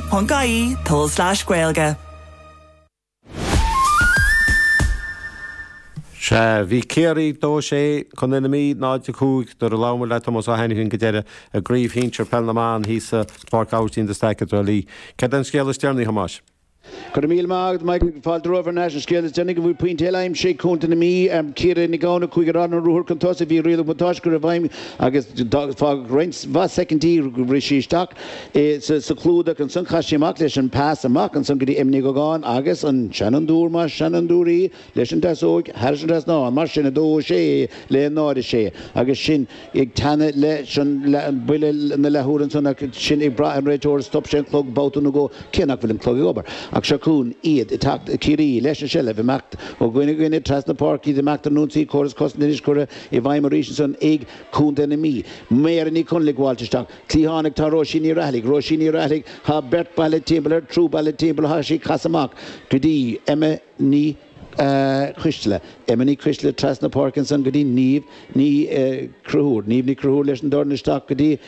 rte.ie, tulslais gaeilge. Sea, bhí Ciarraí 2-6 Contae na Mí 0-5 nuair a labhair muid le Tomás Ó hAinifín go deireadh i gCraobh Shínsear Peil na mBan thíos i bPáirc Aibhistín de Staic i dTrá Lí. Cad é an scéal is deireanaí, a Thomáis? Go raibh míle maith agat, Mike. Fáilte romhaibh ar ais an scéal is deireanaí go bhfuil pointe eile aimsithe ag Contae na Mí, Ciara Nic Gabhann, a chuaigh ar an ruathar chun tosaigh. Bhí riail an bhuntáiste curtha i bhfeidhm agus fágadh roinnt mhaith soicindí roimh bhriseadh isteach. é sa chlúdach. Ansan chaith sí amach leis an pas amach ansan go dtí Emma Ní Dhúgáin agus an seanfhondúir mar sheanfhondúir í leis an deasóig thairis an trasnán. Mar sin 2-6 le 0-6 agus sinn ag teannadh leis an buille na leathuaire ansan ach sinn ag brath ar an réiteoir stop sé an clog babhta nó dhó cé nach bhfuil an clog ag obair ach seo chugainn iad ag teacht Ciarraí leis an seilbh imeacht ó dhuine go duine trasna páirc iad ag imeacht ar an ionsaí córas cosanta anois curtha i bhfeidhm arís ansan ag Contae na Mí. Mary Ní Chonaill ag gabháilt isteach. Cliathánach Tá Róisín Ní Rathaille Róisín Ní Rathaille Tá beirt bailithe timpeall air, triúr bailithe timpeall air, tá sí ag casadh amach go dtí Emma Ní Choisteala Emma Ní Choisteala trasna páirc ansan go dtí Niamh Ní Chonchúir Niamh Ní Chonchúir leis an dorn isteach go dtí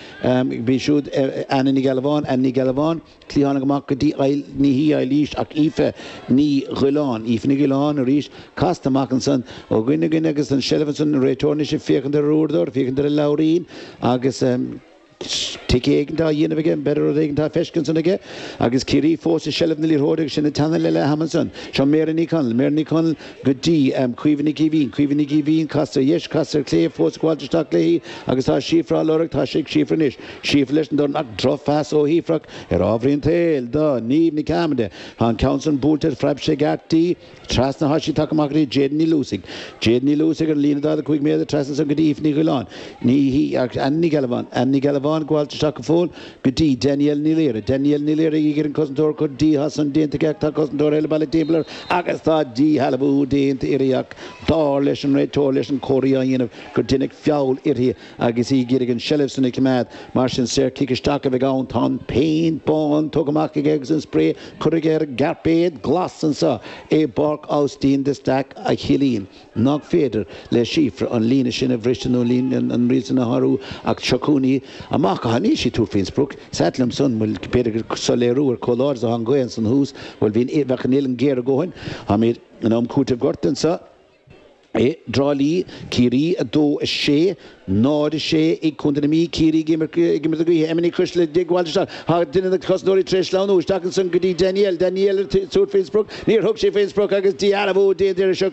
b'í siúd Anna Ní Ghealbháin Anna Ní Ghealbháin Cliathánach amach go dtí Aill, ní hí Eilís ach Aoife Ní Dhuilleáin, Aoife Ní Dhuilleáin arís, casta amach ansan ó dhuine go duine agus an tseilbh ansan, an réiteoir anois ag féachaint ar a uaireadóir, ag féachaint ar a leabhairín agus tic éigint á dhéanamh aige, b'fhéidir rud éigint á feiscint ansan aige agus Ciarraí fós i seilbh na liathróide agus sinn ag teannadh le leath-am ansan. Seo Mary Ní Chonaill, Mary Ní Chonaill, go dtí, em, Caoimhe Nic Eimhín, Caoimhe Nic Eimhín, casta ar dheis, casta ar chlé, fós ag gabháilt isteach léi agus tá Síofra á lorg, tá sí ag Síofra anois, Síofra leis an dorn ach drochphas ó Shíofra ach ar ámharaí an tsaoil, do Niamh Ní Chearmada, tá an ceann san buailte, phreab sé i gceart di, trasna, tá sí tagtha amach go dtí Jayden Ní Luasaigh, Jayden Ní Luasaigh ar an líne 45 méadar trasna ansan go dtí Aoife Ní Dhuilleáin, ní hí, ach Anna Ní Ghealbháin, Anna Ní Ghealbháin, ag gabháilt isteach go fóill, Go dtí Danielle Ní Laoire. Danielle Ní Laoire ag iarraidh an cosantóir a chur di, tá san déanta aici ach tá cosantóir eile bailithe timpeall air agus tá díshealbhú déanta uirthi ach dar leis an réiteoir leis an comharthaí á dhéanamh gur deineadh feall uirthi agus í ag iarraidh an seilbh san a choimeád. Mar sin saor cic isteach a bheidh ann. Tá an péint bán tugtha amach aige agus an spré curtha aige ar an gcairpéad glas anso i bPáirc Austin de Staic a chiallaíonn. nach féidir le Síofra an líne sin a bhriseadh nó an riail san a shárú ach seo chugainn í, amach go hAnna, níl sí ag tabhairt faoin sprioc, is ait liom san, bhuel b'fhéidir gur soiléiriú ar chomh láidir is atá an ghaoth ansan thuas, bhuel bhíonn, bheadh an uillinn géar a dhóthain, táimid in am cúitimh gortaithe anseo i dTrá Lí, Ciarraí 2, 6, Náid a sé ag Contae na Mí, Ciarraí ag imirt ag imirt a gaoithe, Emma Ní Choistealbha ag gabháilt isteach, thar duine de na cosantóirí tar éis sleamhnú isteach ansan go dtí Danielle, Danielle ag tabhairt fén sprioc, níor thug sí fén sprioc agus díshealbhú déanta uirthi, seo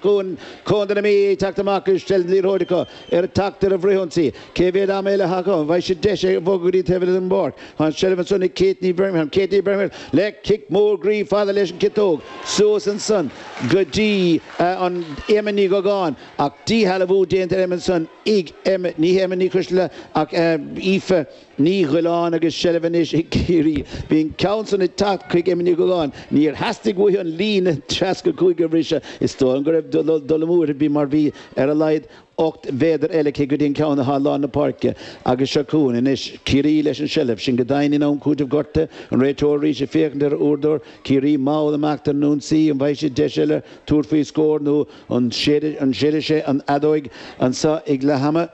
Contae na Mí ag teacht amach agus seilbh liathróide acu ag teacht ar an bhfrithionsaí. Cé mhéad ama eile atá acu, an bhfaighidh siad deis é bhogadh go dtí taobh eile den bpáirc. Tá an seilbh ansan ag Katie Bermingham, Katie Bermingham le cic mór groí fada leis an ciotóg suas ansan go dtí Emma Ní Dhúgáin, Ach díshealbhú déanta ar Emma ansan ag, ní hé Emma Ní Choistealbha ach Aoife Ní Dhuilleáin agus seilbh anois ag Ciarraí. Bhí an ceann san ag teacht chuig Emma Ní Ghoileáin. Níor theastaigh uaithi an líne ceathracha cúig a bhriseadh. Is dóigh liom go raibh dul amú uirthi ar bith mar bhí ar a laghad ocht méadar eile aici go dtí an ceann atá i lár na páirce agus seo chugainn anois Ciarraí leis an seilbh sin go daingean in am cúitimh gortaithe. An réiteoir arís ag féachaint ar a uaireadóir, Ciarraí mall amach ar an ionsaí. An bhfaighidh siad deis eile tabhairt faoi scór nó. An séidfidh sé an fheadóig anso ag leath ama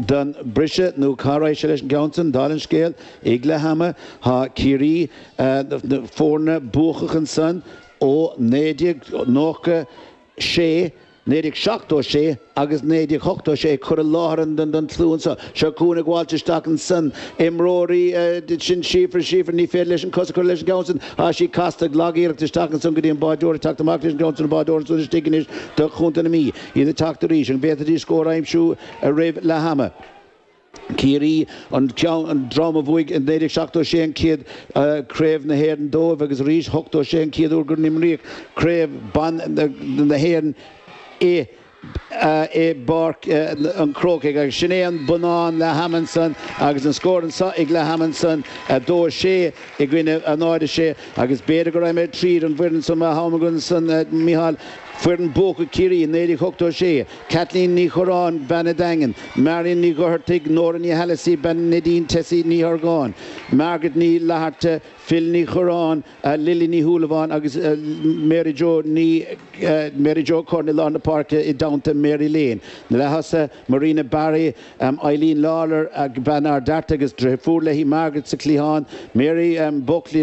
don briseadh nó cá raghaidh sé leis an gceann san, dála an scéil? Ag leath ama thá Ciarraí na foirne buacach ansan ó 1996, 1976 agus 1986 curtha i láthair don tslua anso. Seo chugainn ag gabháilt isteach ansan. Imreoirí, sin Síofra, Síofra, ní féidir leis an cos a chur leis an gceann sin. Tá sí casta ag lag iarracht isteach ansan go dtí an báireoir ag teacht amach leis an gceann san an báireoir ansan istigh anois do Chontae na Mí. Iad ag teacht arís. An bhféadfaidís scór a aimsiú roimh leath ama? Ciarraí, an ceann, an dream a bhuaigh i 1976 an chéad Craobh na hÉireann dóibh agus arís 86 an chéad uair go n-imríodh Craobh ban na hÉireann i i bPáirc an Chrócaigh agus sin é an bonnán leath ama ansan agus an scór anso ag leath ama ansan, 2-6 i gcoinne 0-6 agus b'fhéidir go raghaimid tríd an bhfoireann san má tá am againn ansan a Mhichíl, foireann buacach Chiarraí i 1986, Kathleen Ní Churráin, bean an Daingin, Marion Ní Dhochartaigh, Nóra Ní hAileasaí, bean Neidín, Tessie Ní hArgáin, Margaret Ní Fhlatharta, Phil Ní Churráin, Lili Ní Shúilleabháin agus Mary Jo Ní Mary Jo Curran i lár na páirce i dteannta Mary Lane. Na leath-thosaithe, Marina Barry, Eileen Lawlor, bean Ard Fhearta agus deirfiúr léi, Margaret sa chliathán, Mary Buckley,